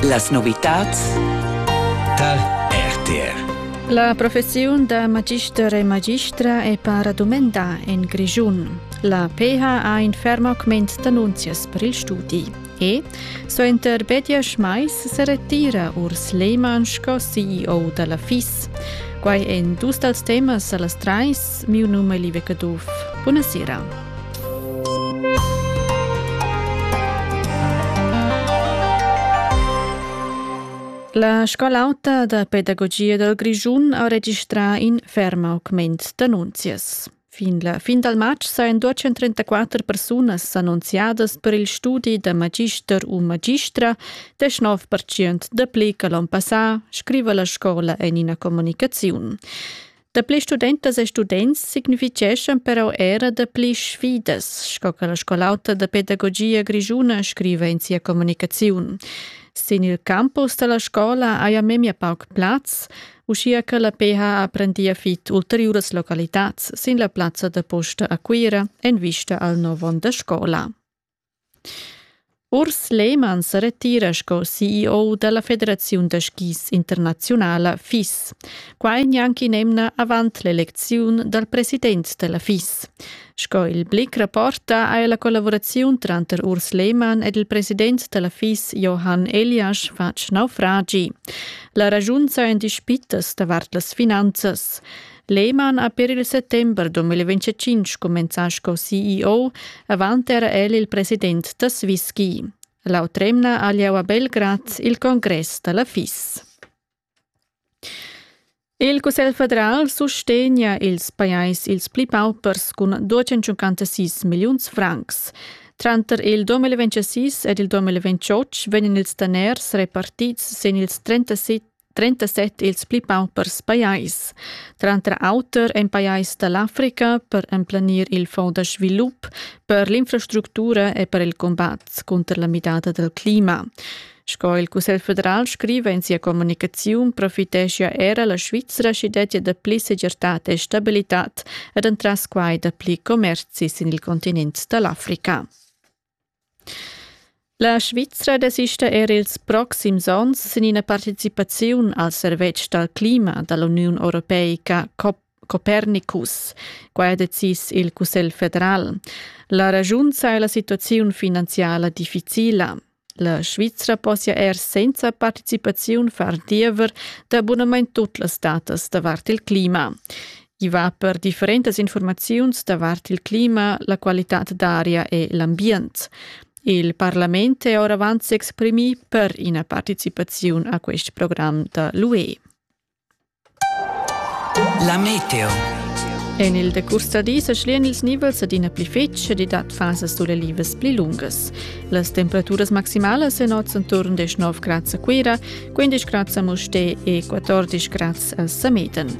Las novitads tar RTR. La professiun da magister e magistra è para dumendà en Grischun. La PH ha in ferm augment d'annunzias per il studi. E, suenter Bedias Mais, se retira Urs Lehmann sco CEO da la FIS. Quai è dus dals temas a las trais. Miu num è Live Caduff. Buonasera. La scola auta da pedagogia dal Grischun ha registrà in ferm augment d'annunzias. Fin la fin dal matg sajan 234 persunas annunziadas per il studi da magister u magistra, 19% dapli che l'onn passà, scriva la scola en ina communicaziun. Dapli studentas e students signifitgeschan però era dapli sfidas, sco che la scolauta da pedagogia grischuna scriva in sia communicaziun. Sin il campus dalla scola haja memia pauc plaz, uschia che la PH prendia fit ulteriuras localitads sin la plazza da posta a Cuira en vista al nov onn da scola. Urs Lehmann sa retira sco CEO dalla federaziun da skis internaziunala FIS, quai gnanc in'emna avant l'elecziun dal president dalla FIS. Sco il Blick rapporta ha ella collavuraziun tranter Urs Lehmann ed il president dalla FIS Johann Eliasch fatg naufragi. La ragiun sajan dispitas davart las finanzas. Lehmann ha per il settember 2025 cumenzà sco CEO, avant era el il president da Swisski. L'autremna ha lieu a Belgrad il congress da la FIS. Il Cussegl federal sustegna ils pajais ils pli paupers cun 256 milliuns francs. Tranter il 2026 ed il 2028 vegnan ils daners repartids sin ils 37 trentaset ils pli paupers pajais, tranter auter en pajais da l'Africa per emplenir il fonds da svilup per l'infrastructura e per il combat cunter la midada dal clima. Sco il Cussegl federal scriva in sia communicaziun, profiteschia era la Svizra sch'i dettia dapli segirtad e stabilitad ed entras quai dapli commerzis sin il continent da l'Africa. La Svizra desista er ils proxims onns sin ina participaziun al servetsch dal clima da l'Uniun europeica Copernicus. Quai ha decis il Cussegl federal. La ragiunza è la situaziun finanziala difficila. La Svizra possia er senza participaziun far diever da bunamain tut las datas davart il clima. I va per differentas informaziuns davart il clima, la qualitad d'aria e l'ambient. Il parlament è oravant s'exprimì per ina participaziun a quest program da l'UE. La meteo. En il decurs da dis schlian ils nivels adina pli fetg ed dat fasas dolevas pli lungas. Las temperaturas maximalas en oz intorn 19 grads a Cuira, 15 grads a Mustè e 14 grads a Sameten.